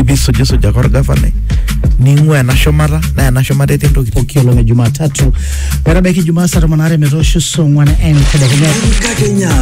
ibisujisuj ake orgavanai ning'ua ena shumata naa ena shumata etii ntokitin pooki olong e Jumatatu metabaiki Jumaa saa tomon aare metoosho saa ong'wan entedekenya. Enkakenya.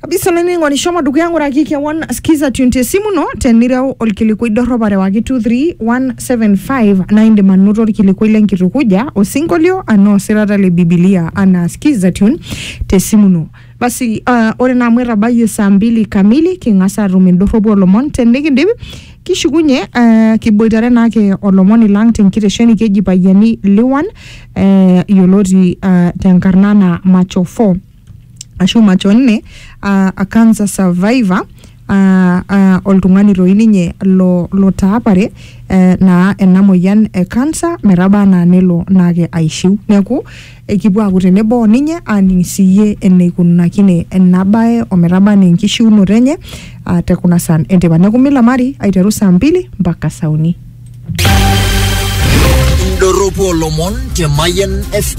kabisa olainining'oni shomo dukuya ng'uraki kewon skiza tune te simu ino tenireu olkilikuai dorrop arewaki 231 75 naa indim anoto orkilikuai lenkitukuja osinkolio anaa osirata le bibilia anaa skiza tune tesimu ino basi uh, ore naa amu etabayie saa mbili kamili king'as atum indorropu olomon tenikindip kishukunye uh, kiboitare naake olomoni lang tenkitesheni keji payiani liwan uh, yioloti uh, tenkarna naa macho 4 ashu macho nne aa a cancer survivor aa aa oltung'ani toi ninye lo lotaapare ee naa ena moyian e cancer metaba naa nelo naake aishiu. Neeku ekipuo aaku tenebo o ninye aaning' siyie enikunakine ena baye o metaba nee enkishiunoto enye aa te kuna saan e nteipa. Neeku milamari aiteru saa mbili mpaka saa uni. Indorropu olomon te Mayian FM.